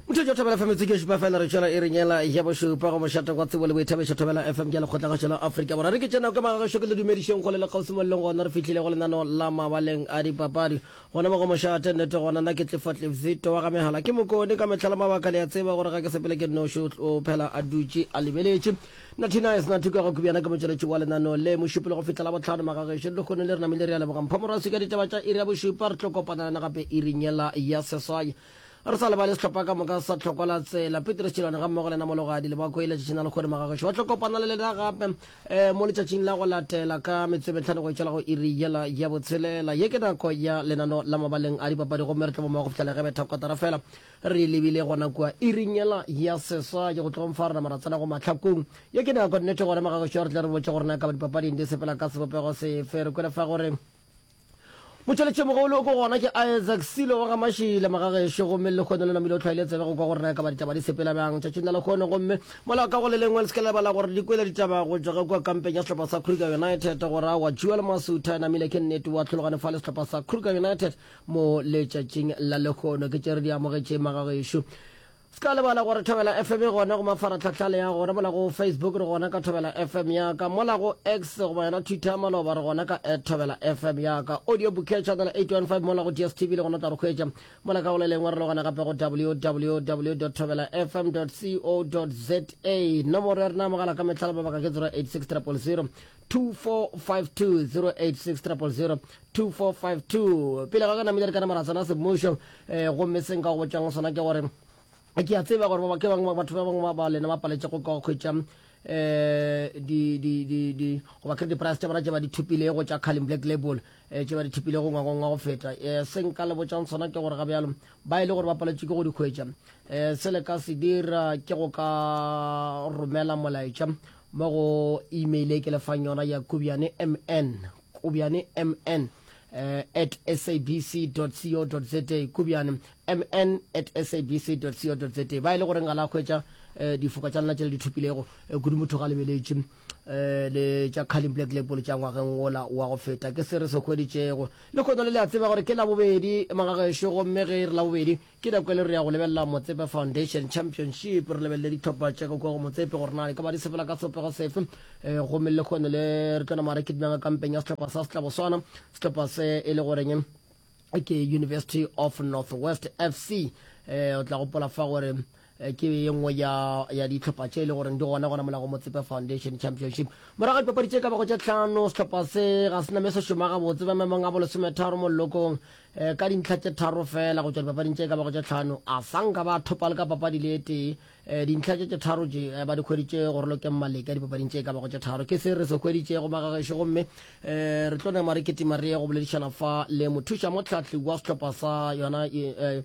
mothetšo thobela fm tseke šupa fela re tšwela e re nyela ya bošupa go mošateng wa tsebo le boithabišo thobela fm ke lekgotlagašo la afrika borwa re ke tšena ka magagašo ke le dumedišong kgole le kgausimo le leng gona re fihlile go lenano la mabaleng a dipapadi gona mo go mošate nnete gona na ke tlefatlevzito wa ga megala ke mokone ka metlhala mabaka le ya tseba gore ga ke sepele ke noši o phela a dutše a lebeletše Natty Nice, Natty Kwego ke bjana ke motšweletši wa lenaneo le, mošupi le go fihla la bohlano magagešo le kgono le re namile re a leboga mpho morasi ka ditaba tša iri ya bošupa re tlo kopana lena gape iring yela ya seswai re sa lebale sehlopha ka moka sa tlhokwa la tsela Petrus Tšilwane ga mmogo lena mologadi le ba koile tšatšing la lekgone magagešo ba tlo kopana le lena gape um mo letšatšing la go latela ka metsometlhano go itšwela go iri yela ya botshelela ye ke nako ya lenano la mabaleng a dipapadi gomme re tlo bomogo go fihla le ge betha kotara fela Re lebile gona kua iring yela ya seswa, ke go tlogo mfa rena mara tsena go mahlakong. Ye ke nako nnete gona magagošo a re tle re botše gore na ka ba dipapading di sepela ka sebopego sefe. Re kwele fa gore motšweletšimogolo go gona ke Isaac Silo wa ga Mashile Magagešo gomme le lekgono le namile o tlhwaile tsebe go kwa gore na ka ba ditaba di sepela bjang tšatšing la lekgono gomme mola ka go le lengwe le se ka lebala gore di kwele ditaba go tšwa ge kua kampeng ya sehlopha sa Kruger United go ra wa Jewel Masutha namile ke nnete wa tlhologane fa le sehlopha sa Kruger United mo letšatšing la lehono ke tšere di amogetše magagešo se ka lebala gore thobela fm e gona go mafaratlhatlha le ya gona mola go facebook re gona ka thobela fm ya ka mola go x goba yona twitter maloba re gona ka at thobela fm ya ka audio bouquet channel 815 mola go dstv le gona tla re hwetša mola ka gole lengwe re le gona gape go www thobela fm co za nomoro ya rena mogala ka metlhala mabaka ke 086 000 2452 pele ga ka namile re ka namara tsena semmušo eh, gomme seng ka go botšang sona ke gore ke a tseba gore ke bangwe batho ba bangwe ba lena ba paletse go ka go kgwetša um eh, goba kry di-price tša bona tše ba di thopilego tša calling black label um eh, tše ba di thopilego ngwagong wa go feta um se nka le botšang sona ke gore ga bjalo ba e le gore ba paletse ke go di kgwetša um se le ka se dira ke go ka romela molaetša Mo go email e ke lefang yona ya kobjane mn kobjane mn uh, at sabc.co.za kobjane mn at sabc.co.za ba e le gore ngala a hwetša uh, difoka tša lena tšele di thopilego uh, kudu motho ga lebeletše uh, le tša caling black label tša ngwageng wola wa go feta ke se re se hweditšego le kgotla le le a tseba gore ke labobedi magagešo gomme ge e re labobedi Ke nako e le re ya go lebelela Motsepe Foundation Championship, re lebelele dihlopha tša ka kua go Motsepe gore na di ka ba di sepela ka sopego sefe. E, gomme le kgone le re tlo nama re kidimanga kampeng ya sehlopha sa Setlaboswana, sehlopha se e le goreng ke University of Northwest FC. E, o tla gopola fa gore Ke ye nngwe ya, ya dihlopha tše e le goreng di gona gona mola go Motsepe Foundation Championship. Morago ga dipapadi tše ka bago tše hlano, sehlopha se ga se na me se šoma gabotse ba maemong a bolesometharo mollokong um ka dintlha tše tharo feela go tšwa dipapading tše ka bago tše hlano. A sa nka ba thopa le ka papadi le e tee. Um dintlha tše tše tharo tše um ba di hweditše go Rolokeng Maleka dipapading tše ka bago tše tharo. Ke se re se hweditšego ba gagešo gomme um re tlo nama re kitima re ye go boledišana fa le mothuša mohlahli wa sehlopha sa yona um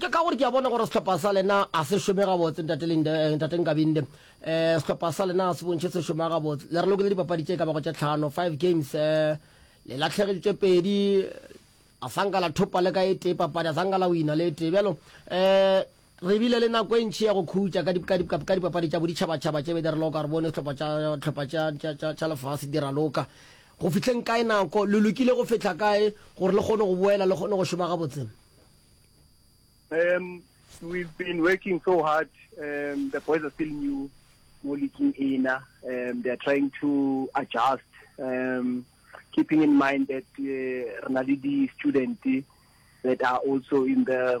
ka gore ke a bona gore sehlopha sa lena a se šome gabotse ntateng eh, kabinde um eh, sehlopha sa lena se bontšhe se šoma gabotse le re lokele dipapadi tše ka bago tše tlhano five games um le latlhegeditše pedi a sanka la thopa le ka e tee papadi a sanka la wina le e tee bjalo um Re bile le nako e ntši ya go khutša ka dipka-dipka-pka dipapadi tša boditšhaba-tšhaba tše be di raloka, re bone dihlopha tša dihlopha tša, tša, tša, tša lefase di raloka. Go fihleng kae nako? Le lokile go fihla kae gore le kgone go boela le kgone go šoma gabotse? Um, we've been working so hard. Um, the boys are still new mo leaking ena. Um, they are trying to adjust. Um, keeping in mind that uh, re na le di-student that are also in the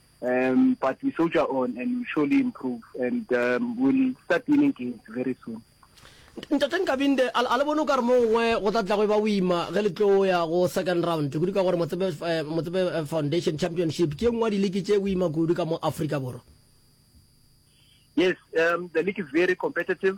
Um, but we soldier on and we surely improve and um, we'll start winning games very soon. ntate nkabinde a le bone o ka re mo gongwe go tla tlago e ba boima ge le tlo ya go second round kudu ka gore motsebe eh, eh, foundation championship ke e nngwe ya dileke tše boima kudu ka mo aforika borwa yes um, the league is very competitive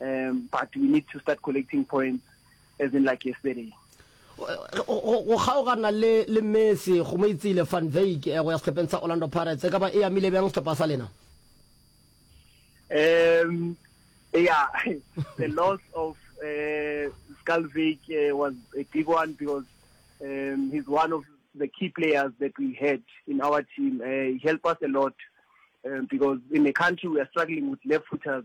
Um, but we need to start collecting points as in like yesterday. go kgaogana le le Messi go mo itsile Van Dijk eh, go ya sehlopheng sa Orlando Pirates e ka ba e amile bjang sehlopha sa lena um yeah the loss of uh, eh, Skalvik uh, eh, was a big one because um, he's one of the key players that we had in our team uh, he helped us a lot um, because in the country we are struggling with left footers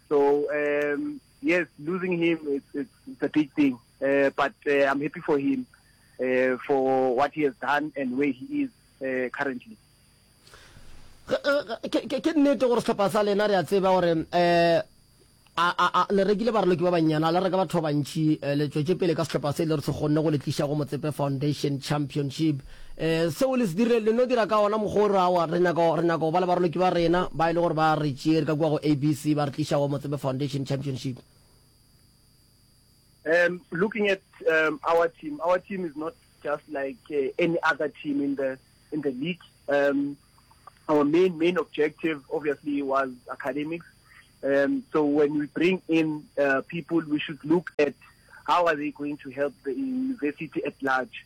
So um, yes, losing him it's, it's, it's a big thing, uh, but uh, I'm happy for him uh, for what he has done and where he is uh, currently. ke nnete gore setlhopha sa lena re a tseba gore um le rekile baraloki ba bannyana le reka batho ba bantšhi eh, le tswetse pele ka setlhopha se e le re se kgonne go le tliša go motsepe foundation championship um seo le se dirile le no dira ka ona mokgwa o re awa re nyaka re nyaka go ba le baroloki ba rena ba e le gore ba re tšee re ka kua go abc ba re tliša wa motsebe foundation championship um looking at um, our team our team is not just like uh, any other team in the in the league um, our main main objective obviously was academics um, so when we bring in uh, people we should look at how are they going to help the university at large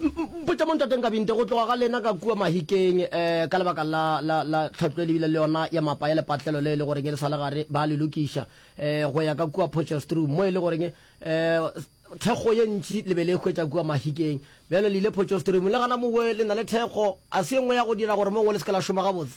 Mpotša mo Ntate Nkabinte go tloga ga lena ka kua Mahikeng eh, ka lebaka la, la, la tlhatlo e lebile le yona ya mapa ya lepatlelo le e le goreng e le sa le gare ba le lokiša eh, go ya ka kua Potchefstroom mo e le goreng eh, thekgo ye ntši le be le hwetša kua Mahikeng. Bjalo le ile Potchefstroom le gana mowe le na le thekgo, a se ye nngwe ya go dira gore mo ngwe le se ke la šoma gabotse.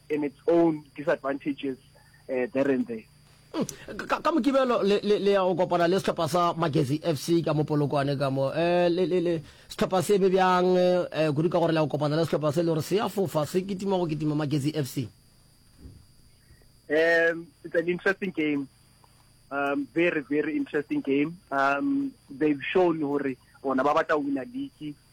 in its own disadvantages there and there. Ka, ka Mokibelo le, le, le ya go kopana le sehlopha sa Magezi FC ka mo Polokwane ka mo. Eh, le, le, le, sehlopha se eme bjang eh, kudu ka gore le ya go kopana le sehlopha se le gore se ya fofa se kitima go kitima Magezi FC? Um, it's an interesting game. Um, very, very interesting game. Um, they've shown hore bona ba batla wina league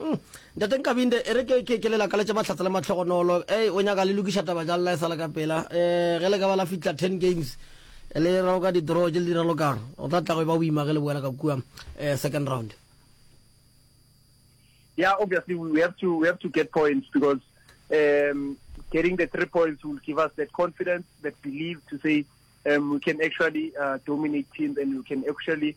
Umm ntate Nkabinde, ere ke ke ke le lakaletše mahlatse le mahlogonolo, ei o nyaka le lokiša taba jang la e sala ka pela, eh ge le ka ba la fihla ten games le raloka di draw tše le di ralokang, go tla tla go e ba boima ge le boela ka kua eh second round. Yeah, obviously we have to we have to get points because um getting the three points will give us that confidence, that belief to say um we can actually uh, dominate teams and we can actually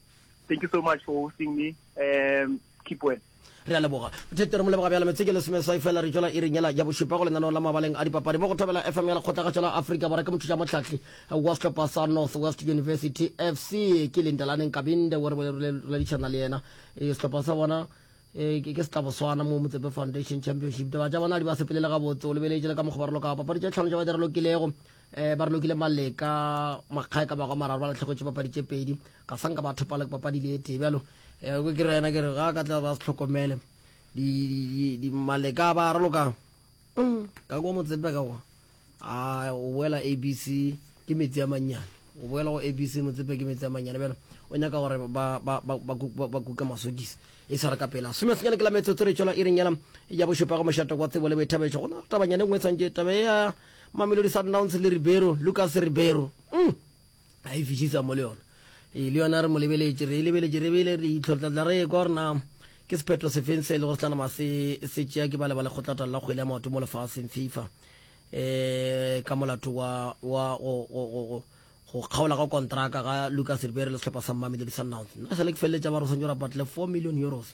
Thank you so much for hosting me um, keep well. Re a leboga. Thete re mo leboga bjalo metseke lesomeswai fela re tšwela iring yela ya bošupa go lenaneo la mabaleng a dipapadi mo go thobela FM ya lekgotlagatšo la Afrika Borwa ke mothuša mohlahli wa sehlopha sa North West University FC ke Lindelane Nkabinde o re boledišana le yena eh, sehlopha sa bona eh, ke se tla boswana mo motsepe foundation championship taba tša bona di ba sepelele gabotse o lebeletše le ka mokgobarolo ka papadi tše tlhano tša ba di re lokilego um ba re lokile maleka makgae ka bagwa mararo ba latlhegwetse papadi tše pedi ga sanka ba thopala ke papadi le etee bjalo um ke re yena ke re ga ka tla ba se tlhokomele maleka ba ralokang mm, ka kwa motsepe ka kwa a o boela abc ke metsi a mannyane o boela go abc motsepe ke metsi a mannyane bjalo o nyaka gore ba kuke masodisa e tshwara ka pela some senyane ke la metsotso re tswela e reng yela ya bošopago mošato kwa tsebo le boithabetšo go na tabanyane nngwe tshwantše tabe ya Mamelodi Sundowns le Ribeiro, Lucas Ribeiro, umm a e fišisa mo le yona. Ee, le yona re mo lebeletše, re e lebeletše, re beile leihlo, re tla tla re ekwa gore na ke sephetho sefeng se e lego se tla nama se se tšea ke bale ba lekgotlataolo la kgwele ya maoto mo lefaseng, FIFA, um ka molato wa wa go go go go go kgaola ga kontraka ga Lucas Ribeiro le sehlopha sa Mamelodi Sundowns. Nna e sa le ke feleletša ba re o swanetše go rapatla le four million euros.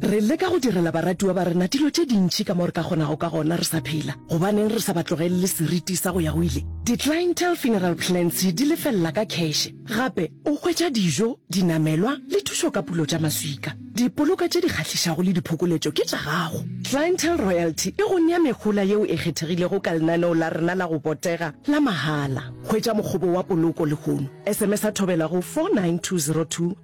Re leka go direla baratiwa ba rena dilo tše dintši ka mo re ka kgonago ka gona re sa phela. Gobaneng re sa ba tlogelele seriti sa go ya go ile? Di-clientele funeral plans di lefelela ka kheshe. Gape o hwetša dijo, dinamelwa le thušo ka pulo tša maswika. Dipoloka tše di kgahlišago le diphokoletšo ke tša gago. Clientele Royalty e go nea mehola yeo e kgethegilego ka lenaneo la rena la go botega la mahala. Hwetša mokgobo wa poloko lehono. SMS-a thobela go 49202.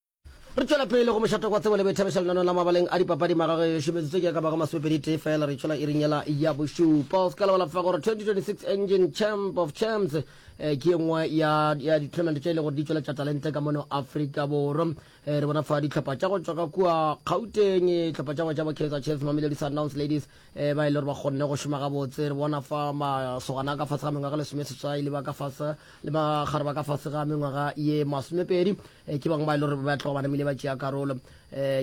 re tšwela pele go mošato kwa tsebo le boithabiša lenano la mabaleng a dipapadi magage yo šometsitse ke ka bago masopedi tee fela re tšwela irinyela ya bošupa o se ka lebala fa gore 2026 engine champ of champs eh, ke ye nngwe ya ditournament tše e le gore di tšweletša talente ka mono afrika borwa eh, re bona fa ditlhopha tša go tšwa ka kua gauteng eh, tlhopha tša go tša bokhetsa chefs mamelodi sundowns ladies ba e le gore ba kgonne go šoma gabotse re bona fa masogana ka fase ga mengwaga lesomeseswai le ba ka fase le magare ba ka fase ga mengwaga ye masomepedi Eh, ke bangwe ba e le gore ba tloga ba namile ba tšea karolo um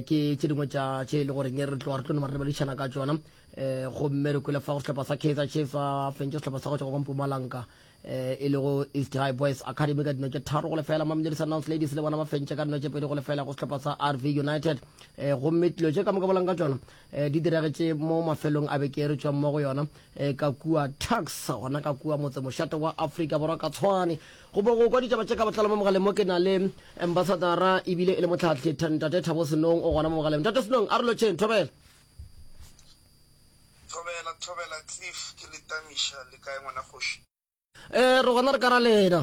ke tše dingwe tša tše e le goreng re tloga re tlo noma re lebadišana ka tsona um eh, gomme re kwele fa go sehlopha sa kaizer chiefs a fentše sehlopha sa go tšwa go mpumalanka um e le go east high boys academy ka dino tše tharo go lefela mamelodi sundowns ladies le bona ba fentše ka dino tše pedi go lefela go sehlopha sa rv united um gomme tlo tše ka moka bolang ka tsona Eh, di diragetše mo mafelong a beke re tšwang mo go yona eh, ka kua tax gona ka kua motse mošate wa afrika borwa ka tshwane go bo go kwa ditšaba tše ka botlalo mo mogaleng mo ke na le ambasadara ebile e le motlhatlhi ntate thabo senong o gona mo mogaleng ntate senong a re lotšheng thobela thobela thobela cliff ke letamiša le kae ngwana kgoši um re gona re ka ra lena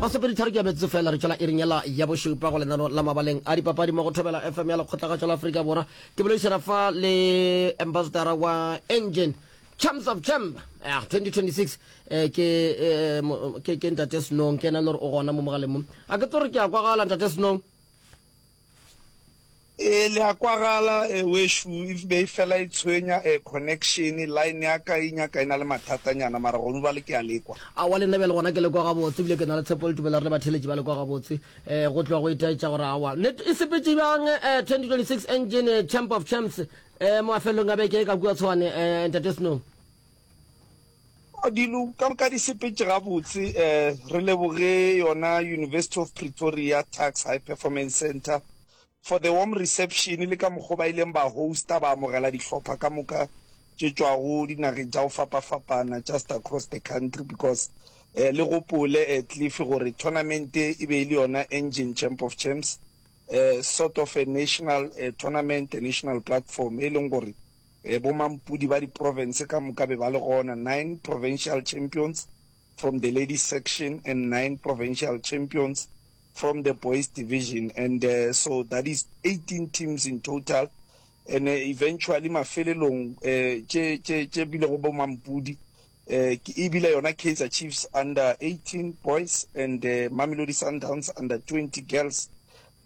masepeditharo ke a metsotso fela re tšwela ering ela ya bošupa go lenano la mabaleng a dipapadi mo go thobela fm ya lekgotlagatšo la aforika borwa ke boledišana fa le ambassadora wa engine champs of champ yeah, 2026 eh, ke, eh, ke, ke ntate snong ke ena le gore o gona mo mogaleng mo a ke tlo re ke ya kwagala ntate snong Ee, le a kwagala eh, wešo e be e fela e tshwenya eh, connection, line ya ka e nyaka e na le mathatanyana, mara gonu bale ke a lekwa. Aowa le nna bjale gona ke le kwa gabotse, ebile ke na le tshepo le tumelo ya gore le batheeletši ba le kwa gabotse. Eh, go tloga go itaetša gore aowa ne e sepetše bjang eh, 2026 Engine eh, Champ of Champs eh, mafelelong a beke e ka kua Tshwane eh, Ntate Snow. Dilo ka moka di sepetse gabotse. Um re leboge yona University of Pretoria Tuks High Performance Centre for the warm reception le ka mokgwa o ba ileng ba hosta ba amogela dihlopha ka moka tše tšwago dinageng tša go fapafapana just across the country because um le gopole um cliff gore tournament e be e le yona engine champ of champs um sort of a national tournament a national platform e leng gore Ee, bomampudi ba diprovince ka moka be ba le gona, nine provincial champions from the ladies section and nine provincial champions from the boys division and uh, so that is 18 teams in total and uh, eventually mafelelong uh, tše tše tše bile go bomampudi uh, ke ebile yona Kaizer Chiefs under 18 boys and uh, Mamelodi Sundowns under 20 girls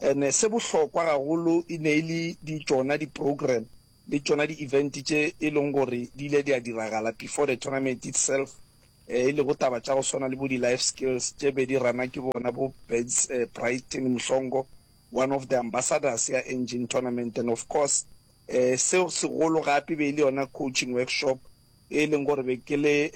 and uh, se bohlokwa gagolo e ne e le di tšona di program le tšona di event tše e lego gore di ile di a diragala before the tournament itself, e lego taba tša go swana le bo di life skills tše be di runwa ke bona bo Beds Brighton Mhlongo, one of the ambassadors ya Engine Tournament and of course se segolo gape e be e le yona coaching workshop e leng gore be ke le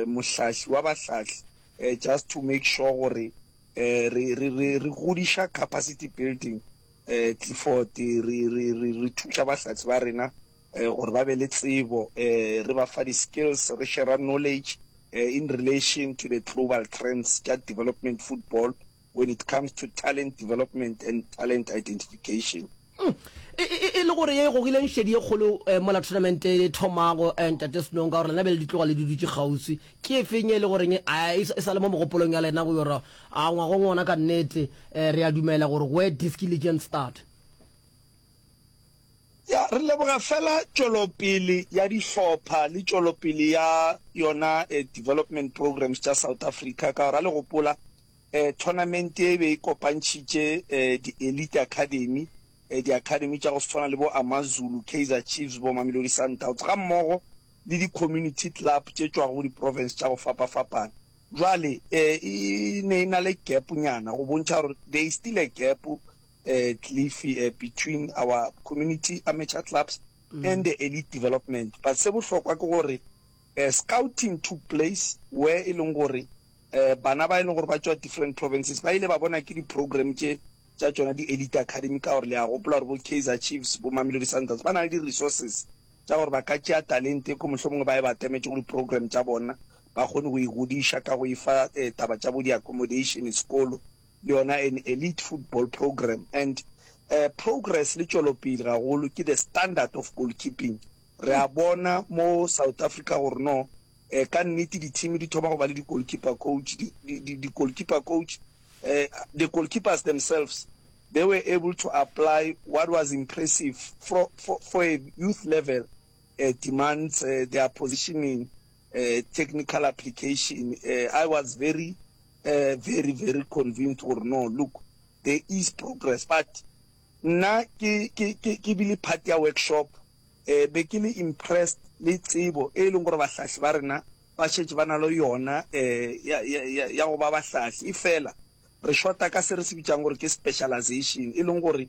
mohlahli wa bahlahli just to make sure gore re godiša capacity building um Clifford, re, re, re, re thuša bahlatse ba rena um gore ba be le tsebo, um re ba fa di-skills, re shera knowledge um in relation to the global trends tša development football when it comes to talent development and talent identification. Um e, e, e le gore ye e gogileng šedi ye kgolo um mola tournament e thomago, um Ntate Snow, ka gore lena be le di tloga le di dutše kgauswi, ke efeng ye e le goreng a e, e sa le mo mogopolong ya lena go yora A ngwa go ngona ka nnete? E, re a dumela gore go e diski le Gen Start. Ya, re leboga fela tšwelopele ya dihlopha le tšwelopele ya yona e development programs tša South Africa, ka gore a le gopola e tournament ye e be e kopantšhitše e di elite academy, e di academy tša go swana le bo Amazulu, Kaizer Chiefs, bo Mamelodi Sundowns ga mmogo le di community club tše tšwago go di province tša go fapafapana. Bjale e ne e na le gap nyana go bontšha gore there is still a gap um Cliff um between our community amateur clubs and the elite development but se bohlokwa ke gore um scouting took place where e leng gore um bana ba e leng gore ba tšwa different provinces ba ile ba bona ke di-program tše tša tšona di-elite academy ka gore le a gopola gore bo Kaizer Chiefs bo Mamelodi Sundowns ba na le di-resources tša gore ba ka tšea talente ko mohlomongwe ba e ba atametse go di-program tša bona ba kgone go igodiša ka go e fa taba tša bo di accommodation, sekolo le yona an elite football program and progress le tšwelopele gagolo ke the standard of goalkeeping. Re a bona mo South Africa gore no ka nnete di team di thoma go ba le di goalkeeper coach, di goalkeeper coach, the goalkeepers themselves they were able to apply what was impressive for a youth level demands their positioning. technical application, I was very, very, very convinced gore no look there is progress but nna ke ke ke ke bile part ya workshop eh be ke le impressed le tsebo e leng gore bahlahli ba rena ba shetse ba na le yona eh ya ya ya go ba bahlahli e fela re shota ka se re se bitsang gore ke specialization e leng gore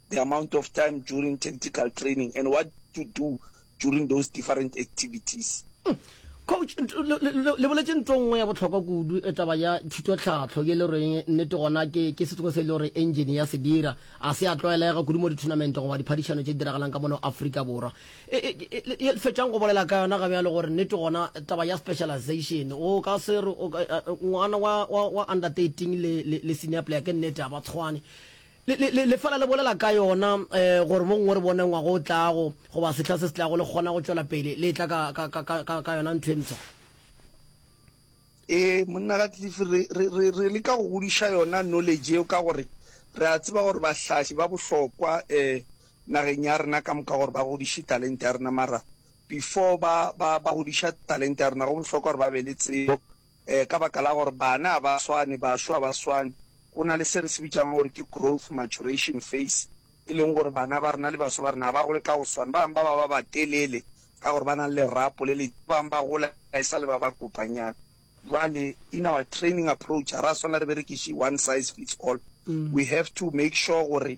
the amount of time during tactical training and what to do during those different activities. Hmm. coach le boletse nto nngwe ya botlhokwa kudu e taba ya thutotlhatlho ye le reng nnete gona ke ke setsogo se e le gore engine ya se dira a se a tlwaelega kudu mo ditournament goba diphadišano tse di diragalang ka mono aforika borwa e, e, e, fetšang go bolela ka yona gabe ya le gore nnete gona taba ya specialization o ka se re ngwana wa under thirteen le senior player ke nnete a ba tshwane Le, le, le, lefela le bolela ka yona, eh, gore mo gongwe re bone ngwaga o tlago, goba sehla se se tlago, le kgona go tšwela pele le etla ka, ka, ka, ka, ka, ka yona ntho e mpsha. Ee, Monna Ratcliffe, re, re, re, re leka go godiša yona knowledge yeo, ka gore re a tseba gore bahlahli ba bohlokwa, eh, nageng ya rena ka moka, gore ba godiše talente ya rena. Mara before ba, ba, ba godiša talente ya rena, go bohlokwa gore ba be le tsebo um ka baka la gore bana ga ba swane, bašwa ga ba swane, go na le se re se bitšago gore ke growth maturation phase, e leng gore bana ba rena le bašwa ba rena ga ba gole ka go swana, ba bangwe ba ba ba batelele ka gore ba na le lerapo le le, ba bangwe ba gola e sa le ba ba kopanyana. Jwale in our training approach ga ra swanela re berekiše one size fits all, we have to make sure gore.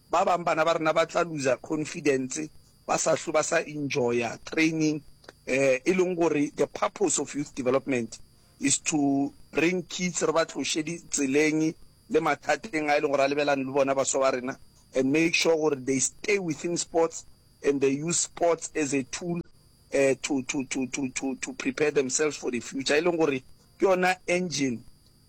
Ba bang bana ba rena ba tla looser confidence, ba sa hlwe ba sa enjoya training, um e leng gore the purpose of youth development is to bring kids, re ba tloše ditseleng le mathateng a e leng gore a lebelane le bona baswa ba rena, and make sure gore they stay within sports and they use sports as a tool um to, to, to, to, to, to prepare themselves for the future, e leng gore ke yona engine.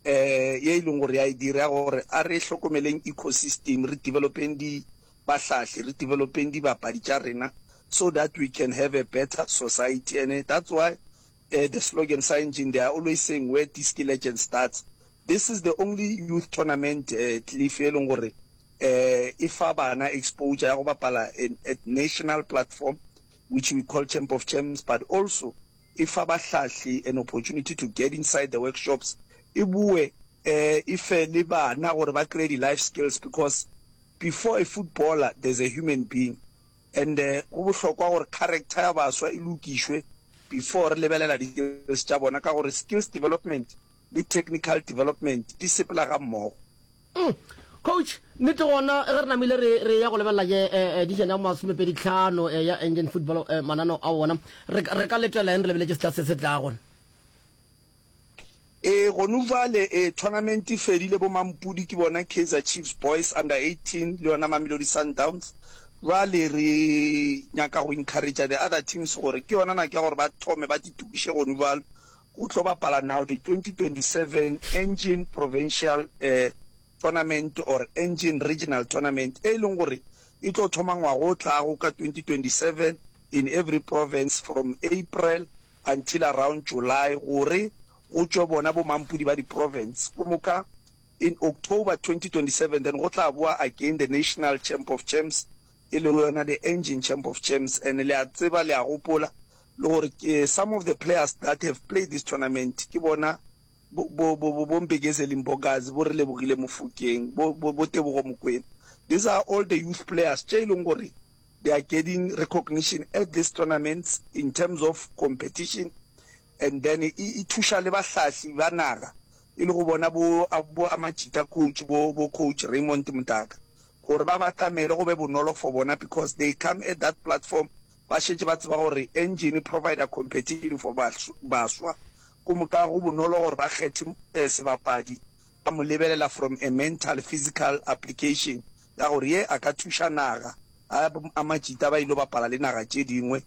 um ye e leng gore ya e dira gore a re hlokomeleng ecosystem re developeng di bahlahli re developeng dibapadi tša rena so that we can have a better society and that's why uh, the slogan sa engine they are always saying where disc legend starts this is the only youth tournament uh, cliff e leng gore uh, e fa bana exposure ya go bapala at national platform which we call champ of champs but also e fa bahlahli an opportunity to get inside the workshops, e boe um e fe le bana gore ba kreye di life skills because before a footballer there's a human being and um go bohlokwa gore character ya baswa e lokišwe before re lebelela di skills tša bona ka gore skills development le technical development di sepela ga mmogo. Umm coach nnete gona ge re namile re re ya go lebelela je edition ya masomepedi tlhano ya Engen Football manano a wona re re ka letela eng re lebeletše sehla se se tlago. Ee gonu bjale ee tournament e fedile bo mampudi ke bona Kaizer Chiefs boys under 18 le yona Mamelodi Sundowns bjale re nyaka go encourager the other teams gore ke yona nako ya gore ba thome ba titokiše gonu bjalo O tlo bapala now the 2027 Engen Provincial Tournament or Engen Regional Tournament e leng gore e tlo thoma ngwaga o tlago ka 2027 in every province from April until around July gore go tšwe bona bo mampudi ba di province go moka in October 2027 then go tla bowa again the National Champ of Champs e lego yona the engine champ of champs and le a tseba le a gopola le gore ke some of the players that have played this tournament ke bona bo bo bo bo bo Mbegezeli Mbokazi bo re Lebogile Mofokeng bo bo bo Tebogo Mokwena these are all the youth players tše e leng gore they are getting recognition at these tournaments in terms of competition and then e e thuša le bahlahli ba naga e le go bona bo boamajita coach bo bo coach Raymond Mdaka gore ba batamele go be bonolo for bona because they come at that platform ba šetše ba tseba gore engine provider competition for baswa go moka go bonolo gore ba kgethe sebapadi ba mo lebelela from a mental physical application ya gore ye a ka thuša naga a amajita ba ile bapala le naga tše dingwe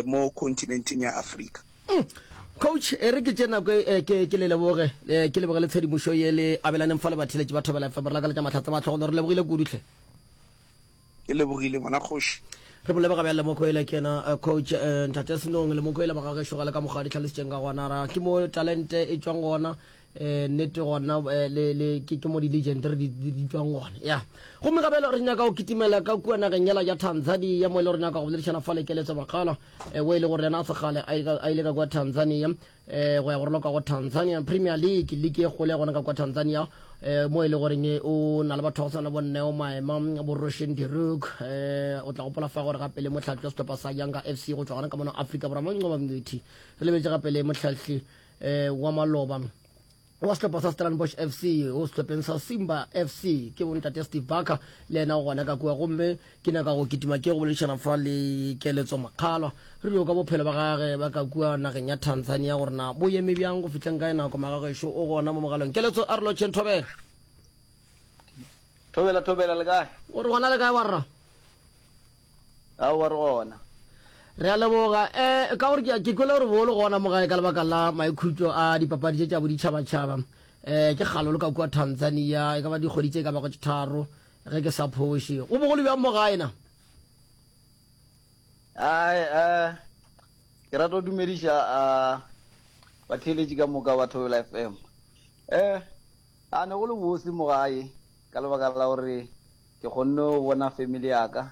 mo continenteng ya Afrika. Coach, e re ke tše nako e ke ke le leboge ke leboge le tshedimošo ye le abelaneng fa le batheletši ba Thobela FM. Re lakaletša tša mahlatse mahlo go le. Re lebogile kudu hle. Ke lebogile ngwana kgoši. Re mo leboga bjang Lemokoele ke yena Coach Ntate Senong. Lemokoele ba ga gešo ga le ka mokgwa a di hlalositšeng ka gona. Ra ke mo talente e tšwang gona eh nete gona eh, le le ke ke mo di legend re di di tswang gona ya go me gabela re nyaka go kitimela ka kua nageng yela ya Tanzania mo e le re nyaka go boledišana fa le keletso makgala eh we le gore na se gale a ile a ile ka kwa Tanzania eh go ya go roloka go Tanzania Premier League league e gole gona ka kwa Tanzania eh mo e le gore ne o na le batho go sana bonne o maema bo Roshan Diruk eh o tla gopola fa gore gape le motlhatlo setlhopha sa Yanga FC go tswa gona ka mona Africa Borwa mo nqoba mngwethi re lebetse gape le motlhatli eh, wa maloba wa sehlopha sa stellenbosch fc o sehlopheng sa simba fc ke bontate steve barker le ena o gona ka kua gomme ke nyaka go kitima ke go boledišana fa le keletso makgalwa re dio ka bophelo ba gage ba ka kua nageng ya tanzania gore na bo eme bjang go fitlheng ka e nako magagešo o gona mo mogalong keletso a re lotšheng thobela thobela thobela le kae o re gona le kae warra Aowa, re gona. Re a leboga. E, ka gore ke, ke kwele gore bo le gona mo gae ka lebaka la maikhutšo a dipapadi tše tša boditšhabatšhaba. E, ke kgale le ka kua Tanzania, e ka ba dikgwedi tše e ka bago tše tharo, ge ke sa phoše. Go bogolo bjang mo gae na? Ai, e, ke rata go dumediša a, batheeletši ka moka ba Thobela FM. E, a ne go le bose mo gae. Ka lebaka la gore ke kgonne go bona family ya ka,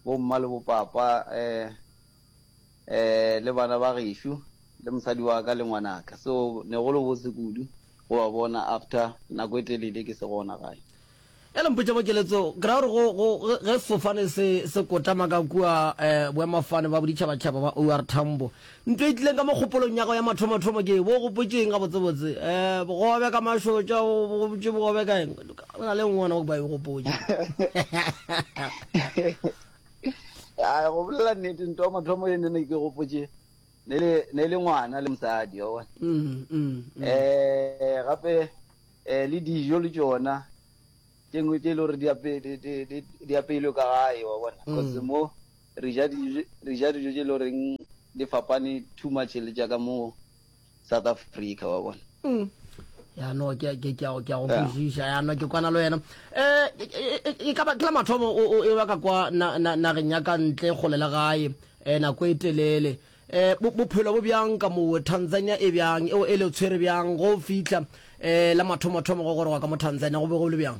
bo mma le bo papa, le bana ba gešo, le mosadi wa ka le ngwanaka. So ne go le botse kudu go ba bona after nako e telele ke se gona gae. Ya le mpotša pokeletso, ke ra gore go ge sefofane se se kotamaka kua boemafane ba boditšhabatšhaba ba OR Tambo, Ntwa e tlileng ka mo kgopolong ya gago ya mathomothomo ke eng? Bo o gopotše eng gabotsebotse? Um, bogobe ka mašotša, o gopotše bogobe ka eng? Go na le nngwe gona go ba e gopotše. A go bolela nnete, ntwa ya mathomo e nene ke gopotše ne le ne le ngwana le mosadi wa bona. Mm, mm, mm. Eh, gape eh le dijo le tšona tše ngwe tše e le gore di ape- di- di- di- di apeilwe ka gae wa bona Mm. cause mo re ja dijo, re ja dijo tše le goreng di fapane too much le tša ka mo South Africa, wa bona. Mm. ya no ke ke ke ke go kwešiša ya no ke kwana le wena eh e ka ba ke la mathomo o e ba ka kwa na na na re nyaka ntle go lela gae eh nako e telele eh bophelo bo bjang ka mo Tanzania e bjang e o ele tshwere bjang go fihla eh la mathomo thomo go gore wa ka mo Tanzania go be go le bjang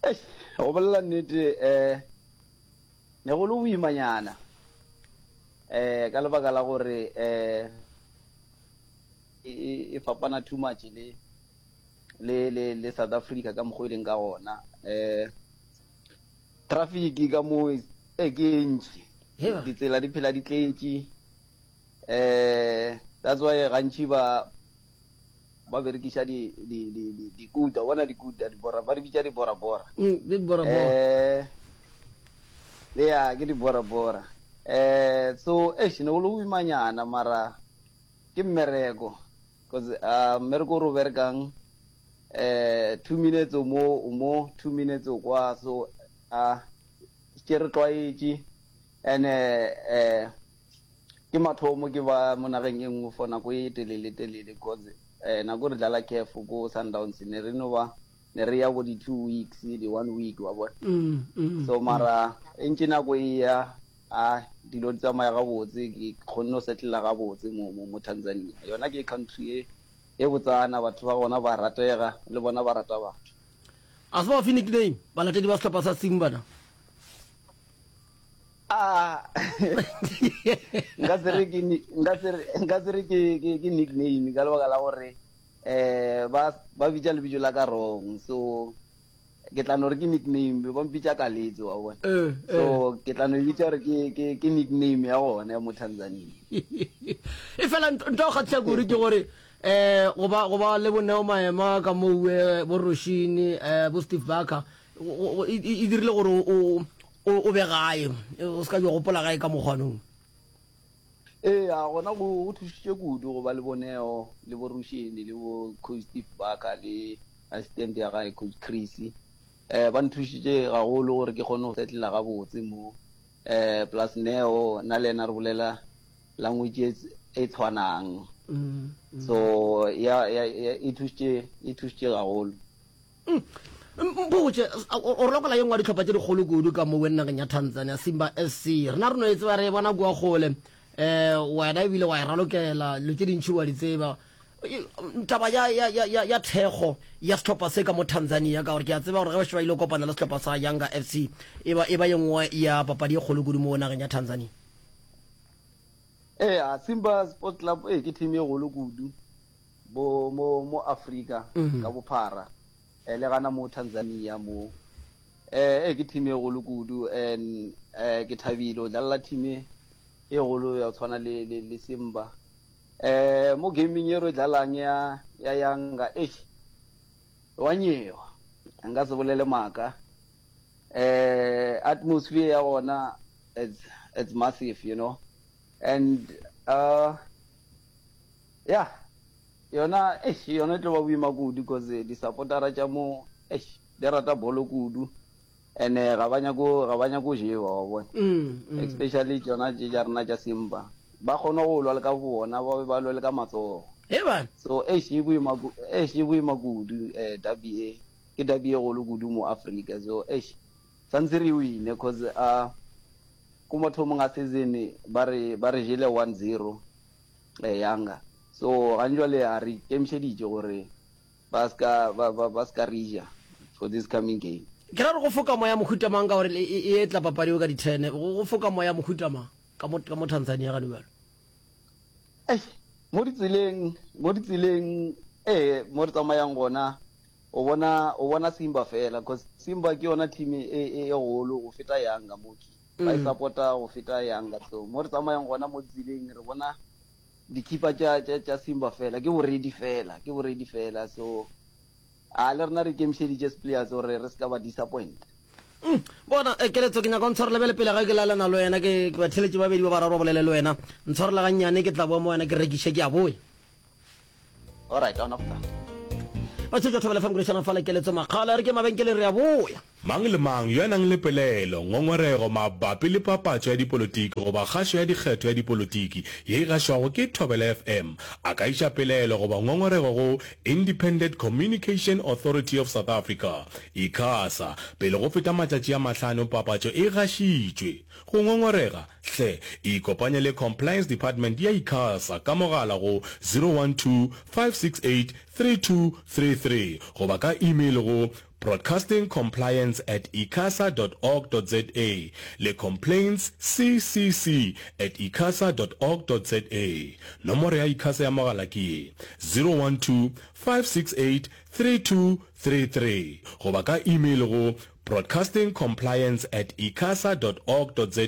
Eish, go bolela nnete um ne go le boimanyana um ka lebaka la gore um e, e, e fapana too much le le le le South Africa ka mokgwa e leng ka gona um traffic ka moo e ke e ntši Heba. ditsela di phela di tletše Eh, that's why gantši ba ba berekiša di di di di di kuta bona di kuta di bora ba di bitša di bora bora mm, di bora bora eh ya ke di bora bora eh so eish ne go le boimanyana mara ke mmereko because uh mmereko o re o berekang eh two minutes o mo o mo two minutes o kwa so a ke re tlwaetše and eh, eh Ke mathomo ke ba mo nageng e nngwe for nako e telele-telele cause nako re dlala CAF ko Sundowns ne re no ba ne re ya ko di two weeks, di one week wa bona. So mara e ntše nako e ya a dilo di tsamaya gabotse ke kgonne go settler gabotse mo mo mo Tanzania. Yona ke country e e botsana, batho ba gona ba ratega le bona ba rata batho. A se ba fe nickname balatedi ba sehlopha sa Simba na? nka se re ke nka se re nka se re ke ke ke nickname ka lebaka la gore eh ba ba bitša lebitso la ka wrong so ke tla no re ke nickname be ba mpitša ka letse wa bona eh, so eh. ke tla no e bitša gore ke ke ke nickname ya gone ya mo Tanzania e fela nto go kgatlisa kuri ke gore eh go ba go ba le boneo maema ka mowe eh, bo Roshini eh bo Steve Barker e, e, e dirile gore o O, o be gae. O se ka yo gopola gae ka mokgwa nong. Eya, gona go, go thušitše kudu go ba le bo Neo, le bo Rusheni, le bo Coach Steve Barker, le assistant ya gae Coach Chris. Um, ba nthušitše gagolo gore ke kgone go settler gabotse mo. Um, plus Neo, nna le yena re bolela language e, e tshwanang. So, ya, ya, ya, e thušitše, e thušitše gagolo. Mpotše, o rokola ye nngwe ya dihlopha tše dikgolo kudu ka mo wennageng ya Tanzania, Simba SC. Rena re no e tseba, re e bona kua kgole. Um, wena e bile wa e ralokela, dilo tše dintši wa di tseba. Taba ya, ya, ya, ya, ya thekgo ya sehlopha se ka mo Tanzania, ka gore ke a tseba gore ge ba šeba ile kopana le sehlopha sa Yanga FC, e ba, e ba ye nngwe ya papadi ye kgolo kudu mo wennageng ya Tanzania. Eya, Simba Sports Club, ee, ke team ye kgolo kudu. Bo mo mo Afrika ka bophara eh, le gana mo Tanzania mo eh, eh ke team e golo kudu and eh ke thabile o dlalla team e golo ya tshwana le le, le Simba eh mo gaming e re dlalang ya ya yanga eish wa nyewa nka se bolele maka eh atmosphere ya gona it's it's massive you know and uh Ya yona eish yona e tlo ba boima kudu because di supportera tša mo eish di rata bolo kudu and ga ba nyako ga ba nyako jewa wa bona mm, mm. especially tšona tše tša rena tša simba ba kgona go lwa le ka bona ba be ba lwe le ka matsogo Eban. so eish e boima ku- eish e boima kudu eh dabi e ke dabi e golo kudu mo africa so eish santse re wine cause a ko mathomong a season ba re ba re jele 1-0 Ee, Younger. So, gane jwale a re ikemišeditše gore ba se ka, ba, ba, ba se ka re ja for this coming game. Ke ra gore go foka moya mohuta mang ka gore e, e etla papadi eo ka di ten, go, go foka moya mohuta mang ka mo, ka mo Tanzania gane jwale? Eish, mo ditseleng, mo ditseleng, ee, mo re tsamayang gona, o bona, o bona Simba fela, cause Simba ke yona team e, e, e golo go feta Younger mo. ba e sapota go feta yang ka tlou. Mo re tsamayang gona mo tseleng re bona dikhipa tša, tša, tša Simba fela. Ke boredi fela, ke boredi fela. So, a le rena re ikemišeditše Spleers gore re se ka ba disappointa. Umm, bona, eh, Keletso, ke nyaka o ntshwarele bjale pele ga ke laelana le wena, ke, ke ba theletše ba babedi ba bararo ba bolele le wena. Ntshwarele gannyane, ke tla boa mo wena ke rekiše, ke a boya. All right, ona go tla. Batšhetšwa Thobela FM Krishana fa lekeletso makgala re ke mabenkeleng re a boya. Mang le mang yo a nang le pelaelo, ngongorego mabapi le papatšo ya dipolotiki goba kgašo ya dikgetho ya dipolotiki ye e gašwago ke Thobela FM a ka iša pelaelo goba ngongorego go Independent Communication Authority of South Africa, Icasa, pele go feta matšatši a mahlano papatšo e gašitšwe. Go ngongorega? Hle ikopanye le Compliance Department ya Icasa ka mogala go 012-568-3233 goba ka email go broadcastingcompliance at icasa dot org dot za le complaints ccc at icasa dot org dot za. Nomoro ya Icasa ya mogala ke ye, 012-568-3233 goba ka email go. Broadcasting Compliance at icasa dot org dot za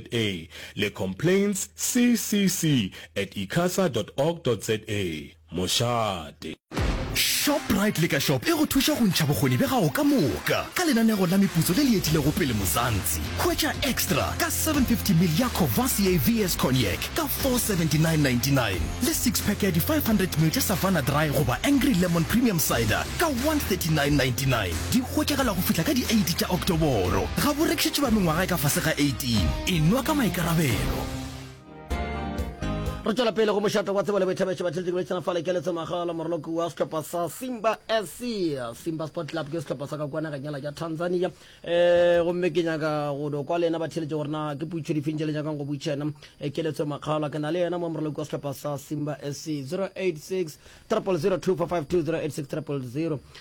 le Complaints CCC at icasa dot org dot za. Mošate. Shoprite Liquor Shop e go thuša go ntšha bokgoni bja gago ka moka ka lenanego la meputso le le etilego pele Mzansi. Hwetša Extra ka 750 ml ya Courvoisier VS Cognac ka 479.99 le six pack ya di 500 ml tša Savanna Dry goba Angry Lemon Premium Cider ka 139.99. Di hwetšagala go fihla ka di 8 tša Oktoboro. Ga bo rekišetše ba mengwaga e ka fase ga 18. E nwa ka maikarabelo. Re tšwela pele go mošate wa Tsebo le Boithabišo Batheletšing le Tšhena Fale Keletso Ngwaga la Moraloki wa sehlopha sa Simba SC Simba Sport Club ke sehlopha sa ka kua nageng yela ya Tanzania e gomme ke nyaka go do kwa le yena batheletši gore na ke puitšho difeng tše le nyakang go buitšha yena e keletso makgala ke na le yena mo moraloki wa sehlopha sa Simba SC 086 000252086 000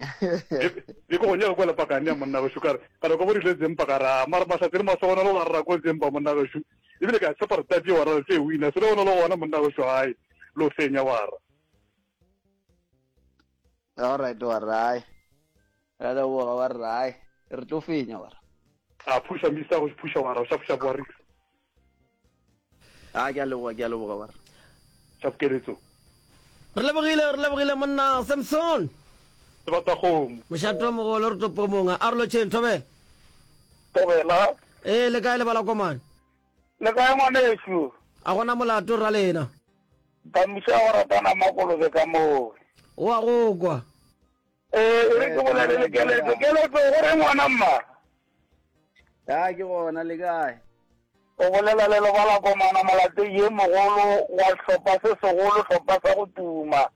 e ko gonya kwa lepakane ya monna gešo kare kare ko borile zempa ka ra mara mahlatse le masogona lo rara ko zempa monna gešo ebile ka tshepa re tati wa rara tse wina se le gona le gona monna gešo gae lo fenya wa ra all right wa rae ra le boga wa rae re tlo fenya wa ra a phuša misa go phuša wa ra o sa phuša boarisa A ke a leboga, ke a leboga ba re. Tša pkeletso. Re lebogile, re lebogile monna Samson. Sebatakgomo. Mošatwamogolo re topo monga. A re lotšheng, Thobela. Thobela. Ee, le kae le bala komane? Le kae ngwanešu? A go na molato rra lena? Ba muša go ratana makolobe ka moo. O a go kwa. Ee, e re ke bolele le keletso. Keletso, go re ngwana mma? Ya, ke gona, le kae? O bolela le lebala komana molatei ye mogolo wa sehlopha se segolo, sehlopha sa go tuma.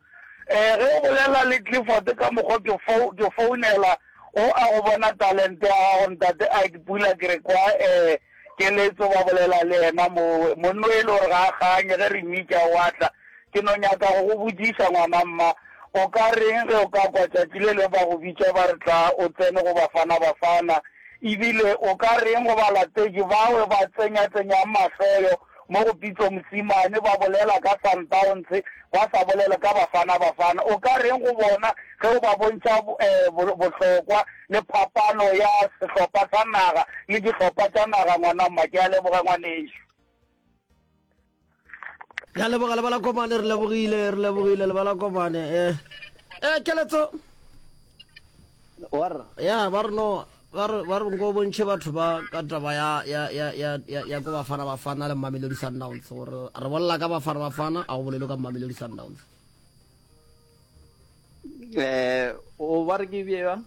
Um ge o bolela le Clifford ka mokgwa ke fou, ke founela, o a go bona talente ya gago, ntate Ike Pula, ke re kwa um Keletso, Ba bolela le yena mo, monna o e le gore ga a kganye, ge re mmitša o a tla. Ke no nyaka go go botšiša, ngwana, mma, o ka reng ge o ka kwa tšatši le lengwe ba go bitša ba re tla o tsene go Bafana Bafana? Ebile o ka reng go balatetši bawe ba tsenyatsenyang mahloyo Mo go Pitso Mosimane ba bolela ka Sundowns ba sa bolele ka Bafana Bafana. O ka reng go bona ge o ba bontšha bohlokwa le phapano ya sehlopha sa naga le dihlopha tša naga? Ngwana mma, ke a leboga ngwanešu. Re a leboga lebalakomane, re lebogile, re lebogile lebalakomane. Eh, eh, keletso. Warra. Ya, ba re no. Ba re, ba re nko o bontšhe batho ba ka taba ya, ya, ya, ya, ya, ya ko Bafana Bafana le Mamelodi Sundowns gore re bolela ka Bafana Bafana a go bolelo ka Mamelodi Sundowns. Eh, o ba re ke bje bjang?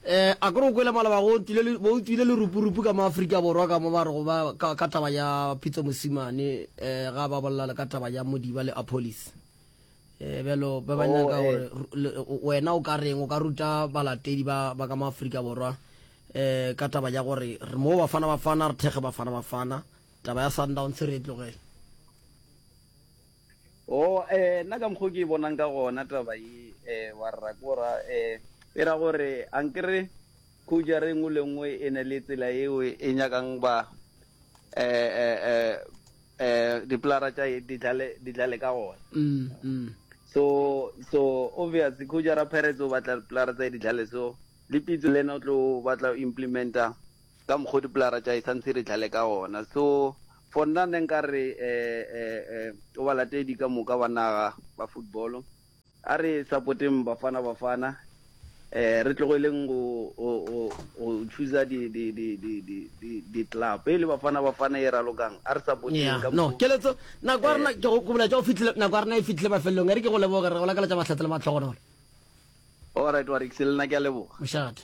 Eh, a kore o kwele malaba go tlile bo tlile le rupurupu ka Afrika Borwa ka mo ba re go ba ka, ka taba ya Pitso Mosimane eh ga ba bolela le ka taba ya Modiba le Apolis. eh, bjalo ba ba nyaka oh, gore eh. wena o ka reng o ka ruta balatedi ba ba ka maaforika borwa um ka taba ya gore re mo bafana bafana re thekge bafana bafana taba ya sundowns re e tlogele o oh, um nna ka mokgwa o ke e bonang ka gona taba e um wa rra kora um e ra gore a nkere khouja re nngwe le nngwe e ne le tsela eo e nyakang ba um Dipolara tša di tla le ka gona. So, so obvious khutša ra Pirates o batla dipolara tša di tla so le Pitso le yena o tlo batla o implementa ka mokgwa dipolara tša sa ntse di tla le ka gona. So for nna ne nka re, eh, eh, eh, o balatedi ka moka ba naga ba football A re sapoteng Bafana Bafana, re tlogeleng go chooser di club e le Bafana Bafana e ralokang, a re sapoteng ka mokgo. Keletso, Nako ya rena, ke go boletša, nako ya rena e fihlile mafelelong. E re ke go leboge, re go lakaletša mahlatse le mahlogonolo. Alright Warriks, le nna ke a leboga. Mošate.